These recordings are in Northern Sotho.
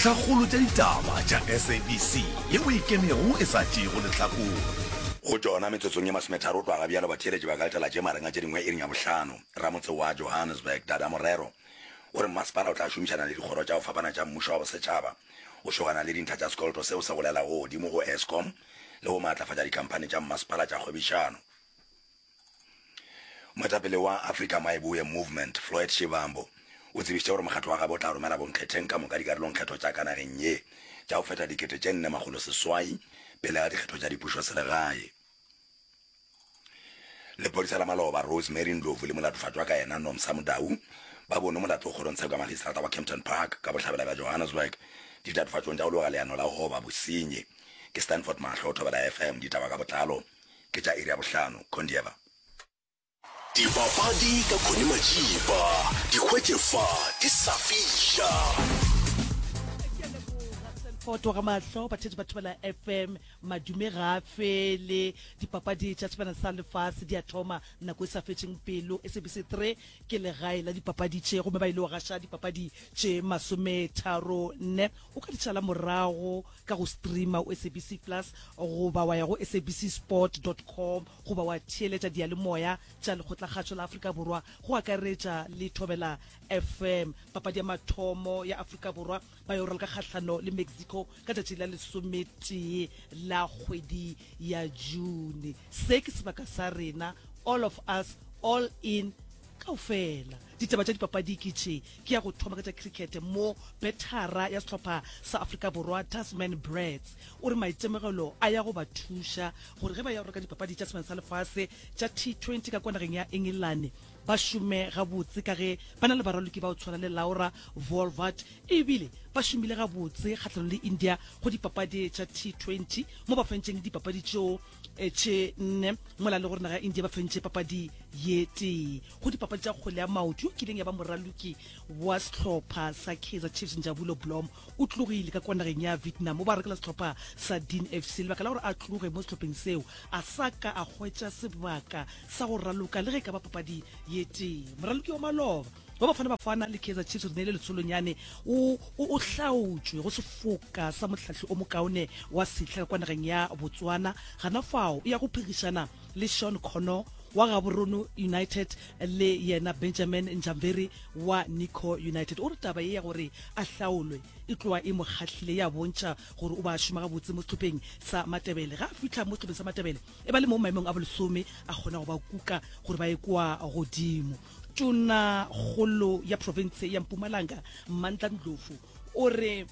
Dintlhakgolo tša ditaba tša SABC ye o e kenego e sa tšeego lehlakore. Go tšona metsotsong ye masometharo o tloga ga bjalo batheeletši ba ka letela tše magareng a tše dingwe iring ya bohlano. Ramotse wa Johannesburg Dada Morero o re mmasepala o tla šomišana le dikgoro tša go fapana tša mmušo wa bosetšhaba go šogana le dintlha tša sekoloto seo se golelago godimo go Eskom le go maatlafatša dikhamphani tša mmasepala tša kgwebišano. Moetapele wa Africa My Boer Movement, Floyd Shivambu, o tsebišitše gore mokgatlo wa gabo o tla romela bonkgetheng ka moka dikarolongkgetho tša ka nageng ye tša go feta dikete tše nne makgolo seswai pele ga dikgetho tša dipušoselegae. Lepodisa la maloba Rose Mary Ndlovu le molatofatšwa ka yena Nomsa Mudau ba bonwe molato kgorong tsheko ya magistrata wa Kempton Park ka bohlabela bja Johannesburg ditatofatšong tša go loga leano la go goba bosenyi. Ke Stanford Mahlo, o thobela FM ditaba ka botlalo. Ke tša iri ya bohlano, Condieva. Dipapadi ka Connie Matšipa, di hwetše fa di sa fiša. foto ga mahlo batheetši ba thobela fm madume ga a fele dipapadi tša sebana sa lefase di a thoma nako e sa fetšeng pelo sabc 3 ke legae la dipapadi tše gomme ba ile wa gaša dipapadi tše masometharo nne o ka ditšala morago ka go streama o sabc plus goba wa ya go sabcsport com goba wa theeletša diyalemoya tša lekgotlakgatšo la afrika borwa go akaretša le thobela fm papadi ya mathomo ya afrika borwa ba yo raloka kgahlano le mexico ka tšatši la lesometee la kgwedi ya june se ke sebaka sa rena all of us all in kaofela Ditaba tša dipapadi ke tše. Ke ya go thoma ka tša cricket mo bethara ya sehlopha sa Afrika Borwa Tasman Brats o re maitemogelo a ya go ba thuša gore ge ba ya go reka dipapadi tša Sengwalo sa Lefase tša T20 ka kwa nageng ya Engelane ba šome gabotse ka ge ba na le baraloki ba go tshwana le Laura Wolvaardt e bile ba šomile gabotse kgahlanong le India go dipapadi tša T20 mo ba fentšeng dipapadi tšeo etše nne mola le gore naga ya india ba fentše papadi ye tee go dipapadi tša kgole ya maoto yo kileng ya ba moraloki wa sehlopha sa kaizer chiefs njabulo blom o tlogile ka kwa nageng ya vietnam o ba rekela sehlopha sa dean fc lebaka la gore a tloge mo sehlopheng seo a sa ka a hwetša sebaka sa go raloka le ge e ka ba papadi ye tee moraloki wa maloba wa bafana bafana le kaizer chiefs re neile letsholonyane o o hlaotšwe go sefoka sa motlhahli o mokaone wa setlha ka kwa nageng ya botswana gana fao e ya go phegišana le sean connor wa gaborone united le yena benjamin njamveri wa nico united o re taba ye ya gore a hlaolwe e tloa e mo kgahlile ya bontšha gore o ba šoma gabotse mo setlhopheng sa matebele ga a fitlha mo setlhopheng sa matebele e ba le mo maemong a bolesome a kgona go ba kuka gore ba ye kwa godimo Tonakgolo ya profense ya Mpumalanga, Mandla Ndlovu, o re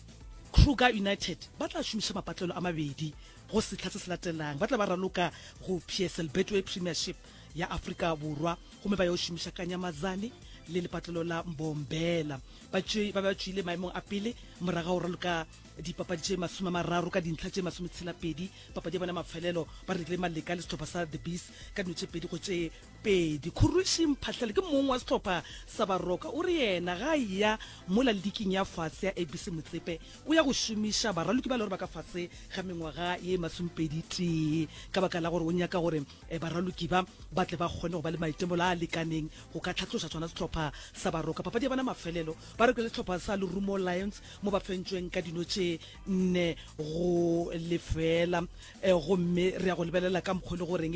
Kruger United ba tla šomiša mapatlelo a mabedi go sehla se se latelang. Ba tla ba raloka go PSL Betway Premiership ya Afrika Borwa gomme ba yo šomiša ka Nyamazane le lepatlelo la Mbombela. Ba tšwe- ba be ba tšwile maemong a pele morago ga go raloka dipapadi tše masome a mararo ka dintlha tše masometshela pedi. Papadi ya bona ya mafelelo ba rekile maleka le sehlopha sa The Bees ka dino tše pedi go tše Pedi, Khurushi Mphahlele ke mong wa sehlopha sa baroka. O re yena ga a eya mola liking ya fase ya ABC Motsepe, o ya go šomiša baraloki ba e le gore ba ka fase ga mengwaga ye masomepedi-tee ka baka la gore o nyaka gore baraloki ba ba tle ba kgone go ba le maitemolo a a lekaneng go ka tlhatloša sona sehlopha sa baroka. Papadi ya bona mafelelo ba rokile le sehlopha sa Lerumo Lions mo ba fentšweng ka dino tše nne go lefeela gomme re ya go lebelela ka mokgwa e le goreng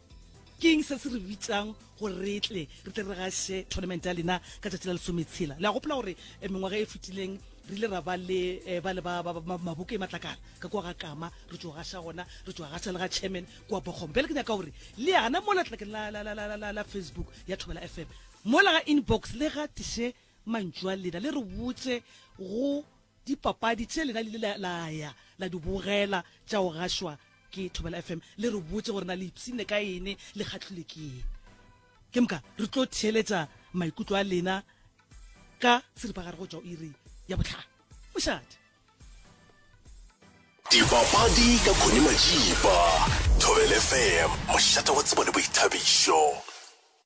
ke eng se se re bitsang gore re tle re tle re gaše tournament ya lena ka tšatši la lesometshela le a gopola gore eh, mengwaga e fetileng re ile ra ba le eh, ba le ba maboke e matlakala ka kwa ga kama re tšo gaša gona re tšo gaša le ga chairman kua bogombe bjale ke nyaka gore le yana mo letlakeng la facebook ya thobela fm mola ga inbox le gatiše mantšu a lena le re botse go Dipapadi tše lena le ile la, la ya la di bogela tša go gašwa ke Thobela FM, le re botše gore na le ipshinne ka ene, le kgahlilwe ke ene. Ke moka re tlo theeletša maikutlo a lena ka seripagare go tšwa o iri ya bohlano. Mošate. Dipapadi ka Connie Majiba, Thobela FM, mošate wa tsebo le boithabišo.